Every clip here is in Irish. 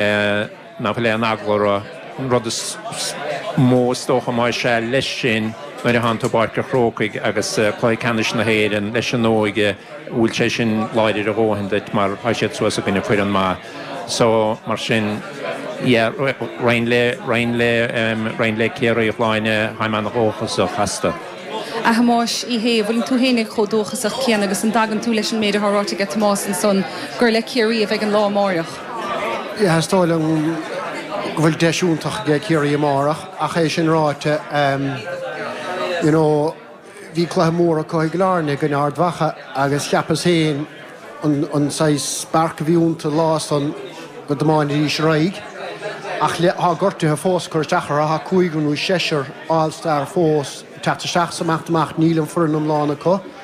nach bhfuil aon eagla orthu. An rud is mó is dócha ná ansan leis sin nuair a theann tú i bPáirc an Chrócaigh agus cluiche ceannais na hÉireann leis an óige an bhfuil sé sin láidir a dhóthain duit mar tá siad suas i gcoinne foireann maith. So, mar sin, yeah, roinn le, roinn le, roinn le Ciarraí, bhíos i gcónaí ana-dhóchasach astu. A Thomáis Uí Shé, an bhfuileann tú héin chomh dóchasach céanna agus an dtagann tú leis an méid atá ráite aige Tomás ansan gur le Ciarraí a bheidh an lá amáireach? Is dóigh liom go bhfuil deis iontach aige Ciarraí amárach ach é sin ráite you know bhí cluiche mór acu i gCill Airne i gcoinne Ard Mhacha agus cheapas féin an an saghas spark a bhí iontu an lá san go dtiomáinfidís ar aghaidh ach le thá gortuithe fós ag cur isteach orthu thá cúigear nó seisear All Star fós ag teacht isteach so amach is amach níl an fhoireann iomlán acu.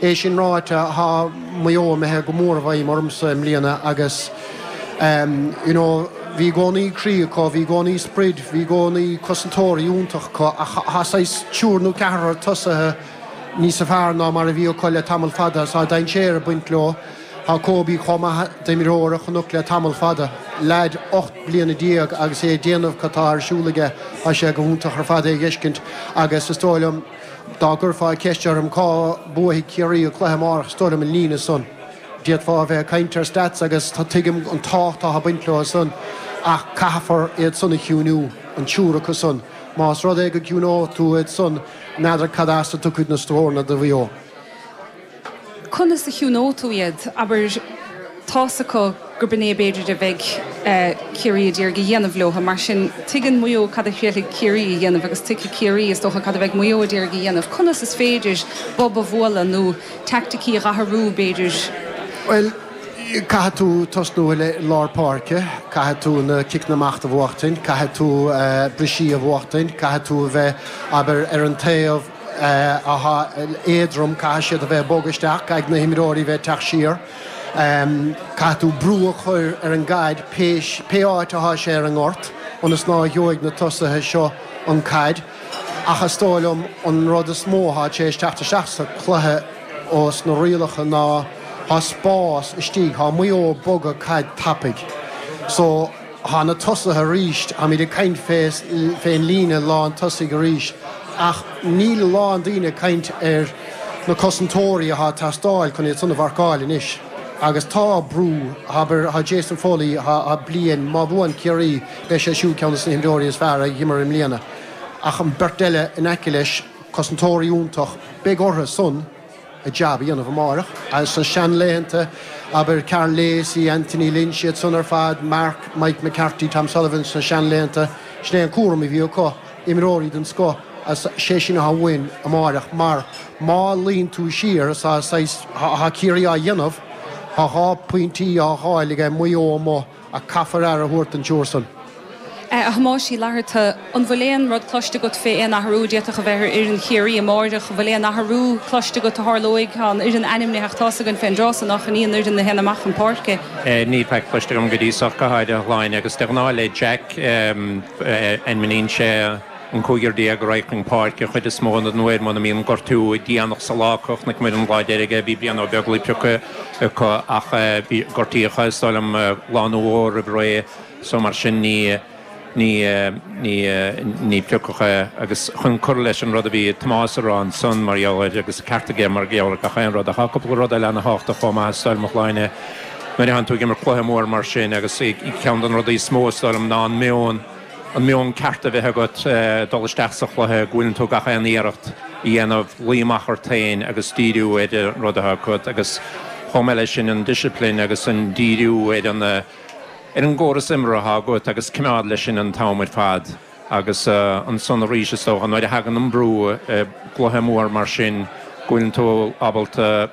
É sin ráite, tá Maigh Eo imithe go mór i bhfeidhm ormsa i mbliana agus you know bhí i gcónaí croí acu, bhí i gcónaí sprid, bhí i gcónaí cosantóirí iontach acu ach tá saghas triúr nó ceathrar tosaithe níosa fearr ná mar a bhí acu le tamall fada. Tá dainséar ag baint leo. Tá Kobe chomh maith d'imreoir a chonac le tamall fada. Leaid ocht bliana déag agus é ag déanamh cad tá ar siúl aige, tá sé go hiontach ar fad é a dh'fheiscint agus is dóigh liom, Dá gcuirfeá ceist orm cá mbuafaidh Ciarraí an cluiche amárach is dóigh liom an líne san. D'fhéadfá a bheith ag caint ar stats agus tuigim an tábhacht atá ag baint leo san ach caithfear iad san a chiúiniú, an triúr acu san. Más rud é go gciúinóidh tú iad san n'fheadar cad as a dtiocfaidh na scóranna do Mhaigh Eo. Conas a chiúnóidh tú iad? Abair, tá's acu gurb in é a b'fhéidir a bheidh Ciarraí a d'iarraidh a dhéanamh leo, mar sin tuigeann Maigh Eo cad a thriailfidh Ciarraí a dhéanamh agus tuigfidh Ciarraí, is dócha, cad a bheidh Maigh Eo a d'iarraidh a dhéanamh. Conas is féidir bob a bhualadh nó teaicticí a dh'athrú, b'fhéidir? Bhuel, caithfidh tú tosnú i lár páirce, caithfidh tú na ciceanna amach do bhuachtaint, caithfidh tú bristeacha a bhuachtaint, caithfidh tú a bheith ag obair ar an taobh, éadrom, caithfidh siad a bheith ag bogadh isteach, caithfidh na himreoirí a bheith ag teacht siar, caithfidh tú brú a chur ar an gcaid pé, pé áit atá sé ar an ngort ionas ná gheobhaidh na tosaithe seo an caid. Ach is dóigh liom an rud is mó atá tar éis teacht isteach sa chluiche ó sna rialacha ná tá spás istigh, tá Maigh Eo ag bogadh na caide tapaidh. So. Tá na tosaithe arís, táimid ag caint fén líne lán tosaigh arís ach níl a lán daoine ag caint ar na cosantóirí atá ag teastáil chun iad san a mharcáil anois agus tá brú, abair, tá Jason Foley, tá bliain, má bhuann Ciarraí beidh sé siúd ar cheann des na himreoirí is fearr a dh'imir i mbliana ach an beirt eile in aice leis, cosantóirí iontach, beidh orthu san. a jab a dhéanamh amáireach. Sna seanlaethanta, abair, Karl Lacey, Anthony Lynch, iad san ar fad, Mark, Mike McCarthy, Tom Sullivan, sna seanlaethanta, sin é an cúram a bhí acu, imreoirí den scoth, a's sé sin athá uainn amáireach, mar má luíonn tú siar, a's tá saghas, thá Ciarraí á dhéanamh, tá dhá phointí á dháil aige Maigh Eo amuigh, Ach caithfear aire a thabhairt don triúr san. A Thomáis Uí Fhlatharta, an bhfuil aon rud cloiste agat fé aon athrú a d'fhéadfadh a bheith ar fhoireann Chiarraí amáireach? An bhfuil aon athrú cloiste agat a tharlóidh? Tá an fhoireann ainmnithe ach tá's againn fén dtráth so nach in í an fhoireann a théann amach chun páirce. Níl faic cloiste agam go dtí so, go háirithe a Shláine, agus de ghnáth le Jack ainmníonn sé an cúigear déag, a raghaidh chun páirce, chuid is mó den uair, muna mbíonn gortú déanach sa lá acu, chonaic muid an lá deiridh é, bhí Brian Ó Beaglaoich pioctha acu ach bhí, gortaíodh, is dóigh liom, lá nó dhó roimh ré so mar sin ní, ní, ní, ní piocadh é agus chun cur leis an rud a bhí Tomás a rá ansan mar gheall air agus ceart aige mar gheall ar gach aon rud ach tá cúpla rud eile ana thábhachtach chomh maith is dóigh liom a Shláine nuair athánn tú ag imirt cluiche mór mar sin agus ceann den rudaí is mó is dóigh liom ná an meon an meon ceart a bheith agat dul isteach sa chluiche, go bhfuileann tú gach aon iarracht a dhéanamh luí amach ort féin agus díriú ar an rud athá agat agus chomh maith leis sin an discipline agus an díriú ar an ar an gcóras imeartha atá agat agus coimeád leis sin an t-am ar fad agus ansan arís is dócha nuair a thagann an brú i gcluiche mór mar sin go bhfuileann tú ábalta